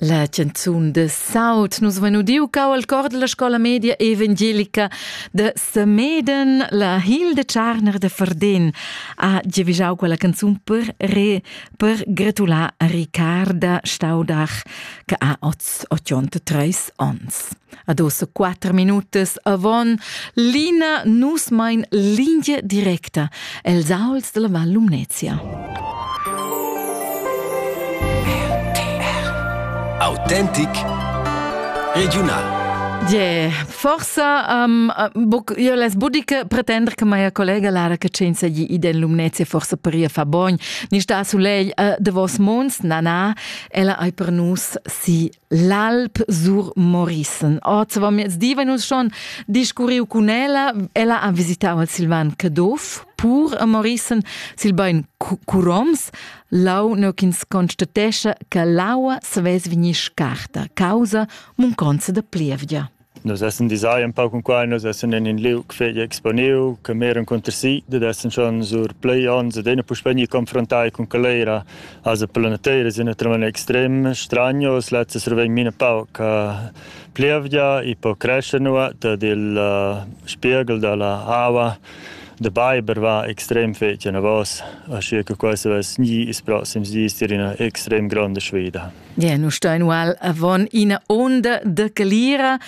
La canzun de saut nus vein udiu cau al cor della scola media evangelica de Semeden, la Hilde Tscharner de Verden ha giavischau quella canzun per re, per gratular a Ricarda Staudach che ha oz 83 onns. Ad ossa quatter minutas avon l'ina nus mein linea directa els auls della Val Lumnezia. Autentic regional. Yeah, forsa um, boc, io les budica pretender che mia collega Lara Cacenza gli iden Lumnezia forsa paria fa bogn, ni sta sulegl uh, de vos munds, nana, ella ai per nus si l'alp sur Morrison. Ot va miez diva nus schon discurriu cun ella, ella ha visitau al Silvan Caduff pur a Morrison sil bein curoms, lau neu ch'ins constatescha che l'aua savess vegnir scarta causa munconza da plievgia. Nus essan disai un pau cun quai, nus essan in in liug fegl exponiu, che mer encunter si, dad essan schon sur plei onns ed ena puspei ni confrontai cun calera. Also per la natira es naturalmein extrem stranius, lezza survegn mine pauc uh, plievgia, i po crescer nuot ed il uh, spiegel dalla aua de Beiber war extrem fetg anavos, aschi che quei savess ni ils proxims dis dir ina extrem gronda sfida. Ja, nu stain ual avon ina onda de calira.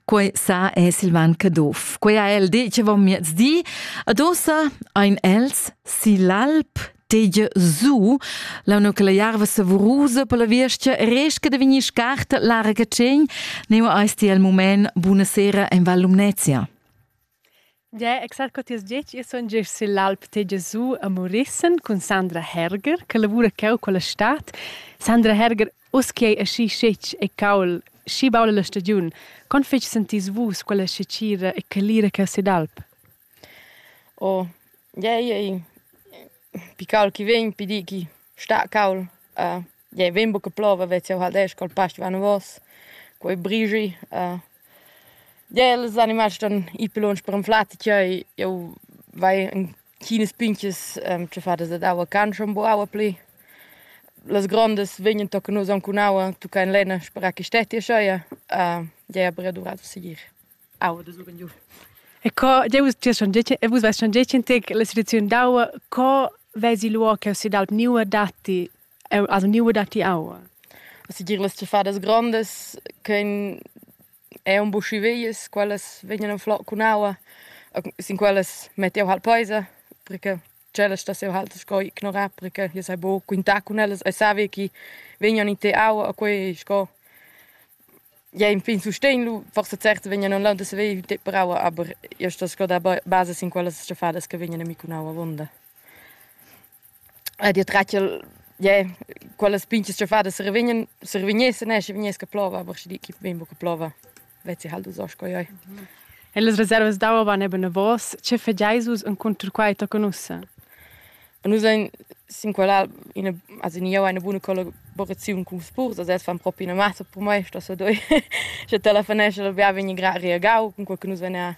Quei sa è Silvan Caduff. Quei ha el detg avon miezdi. Adossa ein els si l'alp tegia zu, la no che la jarva savurusa per la viestia resca de venir scarta l'arga tschen, neu eis ti al moment buona sera en Val Lumnezia. Gie, exact co ti has detg. Io sun gest sill'Alp Tegia giu a Morissen cun Sandra Herger, che lavura cheu culla stad. Sandra Herger, uss che ei aschi schetg e caul, schi baul la stagiun, con fetg sentis vus quella scecira e calira cheu sill'alp? Oh, gie, ei ei piccau chi vegn, pi di chi sta caul. Jei vegn buca plova vez jeu halt esch col past vanavos, quei brigi. Jei els animals ston ir pli lunsch per anflar tgei, jeu vai en chinas pintgas tschaffadas dad aua can schon bu aua pli. Las grondas vegnan tocca nus aunc cun aua, tucca en lenna sperar che stetti ascheia. Jei aber era duvrau da segir aua da suren giu. E co, jeu vus ti schon detg, e vus vais schon detg in tec la situaziun d'aua, co vesi luo che si d'alp niua datti Eu as vgniva datti aua. Segir las tschiffadas grondas ch'ein è un buschi veias, quellas vegnan flot cun aua, sin quellas met jau halt peisa, perché tschellas stas jau halt sco ignorar, perché io sai buca quintar cun ellas. Ei savi chi vegnan in te aua a quei sco ja infin sustegn lu, forsa certo vegnan en lauda saver te per aua, aber io sto sco da basa sin quellas tschiffadas che vegnan a mi cun aua avonda. Ed io tratgel, ie, quellas pinzas tschaffadas survignan, survignessen e schi vegnesch a plover, aber schi di chi vegn buca a plover, vezzi halt uss sco ioi. E las reservas d'aua van eben enavos. Che fageis vus encunter quai tochen ussa? Nus ein sin quella ina, also ni jau eine buona collaboraziun cun spurs, also els fan propi ina massa per mei, sto so doi. Sche te la fenescia da bia vegn gra reagau, cun quel che nus vegn a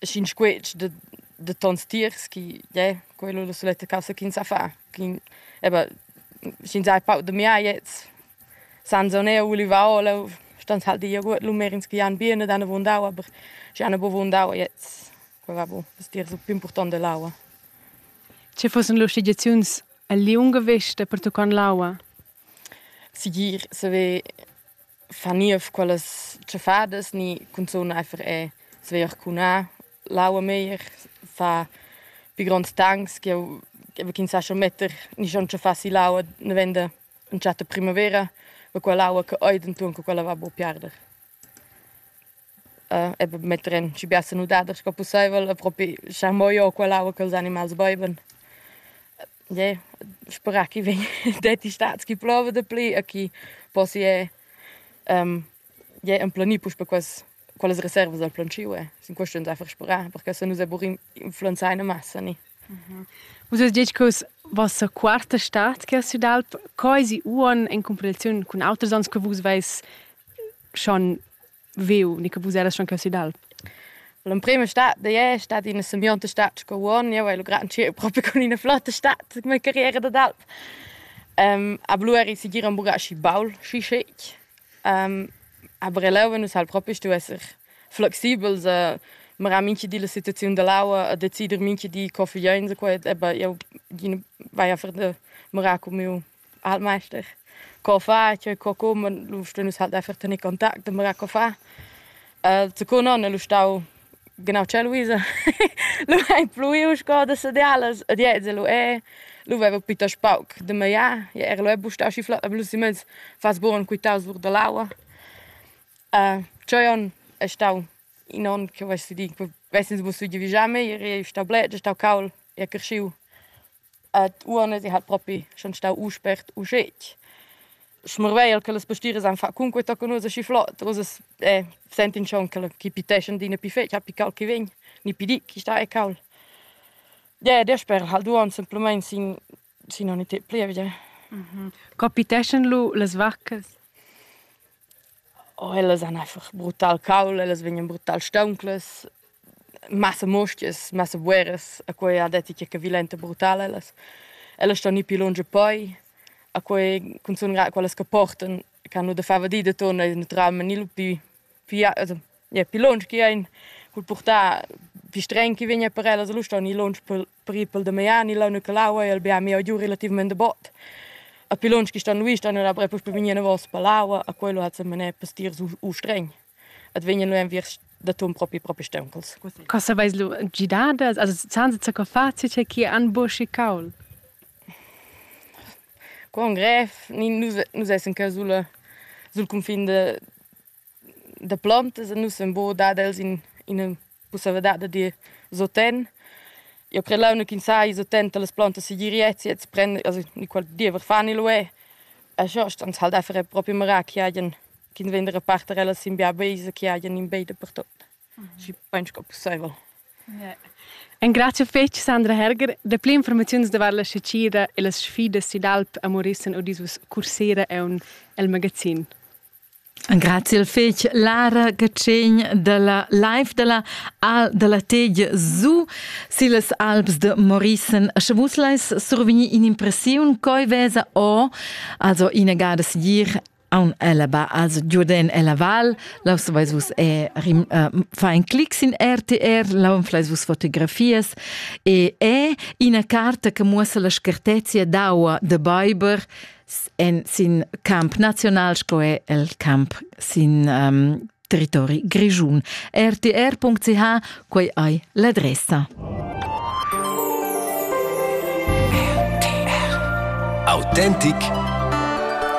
Schin squetsch da da tons tiers chi yeah quello la suletta cassa ch'ins ha fa ch'in eba sch'ins ha pauc da miaiets senza un eau ulivaola stand halt die Joghurt lumerins chi han bien ed han avunda aber schi han avunda jetzt quella bu es tiers più important dell'aua. Che fussen lur schligiaziuns el liunga vesta pertuccond l'aua? Sigir saver far niev quellas tschaffadas ni cunzun eifer e saver arcunar l'aua meglier, far pi gronds tancs ch'jeu ch'jeu vegg insatge a metter ni schon tschaffar si l'aua davenda entschatta primavera, va quell'aua che ei denton che quella va buca piarder. e metter en schi bia sanudada sco pusseivel e propi schar mo ir culla aua ch'ils animals beivan. Ie, sperà chi vegn detti stats chi plova dapli e chi possia ie emplenir puspe quels quellas reservas dal plantschiu e sin quest ün d'eir sperà perche se nus eburir influenzaina massa ni. Vus hast detg che vossa quarta stad che ha sü d'alp, co esi uonn in cumparatiun cun auters ans che vus veis schon viu ni che vus eras schon così d'alp L'emprima stat da è stata in simbionta stat sco uon, io hai lo gran ciel proprio con una flotta stat come carriera d'alp. Um, a Blu eri sicir un bugasci baul, schi schic. Um, aber eleu nus hal propi stu esser flexibels a marà minchi di la situaziun da l'aua a decider minchi di co figlieins e quet, aber io gina vaia a fer da marà cun miu Altmeister. Co fa tgei co cuman, lu stun nus halt einfach tener contact e mirar co fa. secund onn el stau genau tschelluisa. lu ein pluiu sco da sadialas ed ins lu è. Lu veva piuttost pauc da magliar. Ja era lu è buc stau schi flot, aber lu si mez fas bugen quitaus our dall'aua. tscheu onn è stau in onn che vess di, vess'ins buc stuiu vigiar meglier, ei stau bler, ei stau cauld, ei creschiu. Ed uonn esi halt propi schon stau u spert u schetg. Schmarvegl che las pastiras han fat cunquei tochen ussa schi flot. Ussa sentin schon che chi piteschan adina pi fetg, pi cauld chi vegn, ni pi ditg chi sta e cauld. Ie, dasper halt uonn semplamein sin sin ogni temp plievidia. Co piteschan lu las vaccas? O ellas han einfach brutal caul, ellas vegnan brutal staunclas, massa muostgas, massa bueras, a quei ha detg che violenta brutal ellas. Ellas ston ir pli lunsch e poi, a quei cunzun grad quellas che portan, ch'han nu da far vadida, turnan neutralmaing ni lu pü, pü also Ja, pil lunsch chi ein cul purtar fistregn chi vegn per ellas lu ston ir lunsch per, per ir pel Damian, ir leu neu quel aua e al bia miu giu relativament da bot. A pi lunsch chi ston lui ston era bref uss per vegnir enavos per l'aua, a quello hat semané per stir su, u stregn. Et vegnan lu enviers da ton propi propi steuncels. Co saveis lu gidar das? Also zahn se co fazi che chi an buschi caul? Con grev, ni nus nus essen ca sul sul cunfin de Da plontas e nus ün bô dad els in ina pussaivladad da dir soten. Eu cret launa ch'ins saja soten da las plantas segir ets e prender also qual diever fan il uê. E schort ans ha'l da fer propi marà chi hajan chi'ns vegn da reparter ellas sin bia veisa, chi hajan in bei dapertot, schi pain sco pussaivel. Ingrazcha fetg Sandra Herger. Dapü informaziuns davart la sacira e las sfidas id alp a Morissen udis vus cursera eun el magazin. Grazie al fetg Lara Catschegn dalla live dalla Al dalla Teg su sillas Alps de Morissen. Sche vus leis survegnir in'impressiun coi vesa o also inegada sigir aun ella ba also giuden ella val laus vais vus e rim, uh, fa ein clics in RTR laun flais vus fotografias e e ina carta che muossa la schertezia d'aua de Beiber en sin camp nazional sco è il camp sin um, territori grischun. rtr.ch quei ei l'adressa. Autentic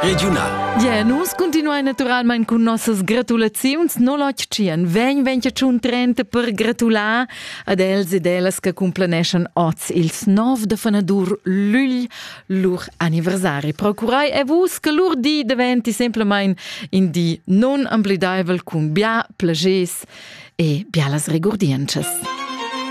Regional. Ja, nus continuai naturalmein cun nossas gratulaziuns, no lotg tschien, vegn vegn tschun trenta per gratular ad els ed ellas che cumplaneschan oz ils 9 de fanadur Lüll lur anniversari. Procurai e vus che lur di diventi semplamain in di non amplidaivel cun bia plages e bialas regurdientschas.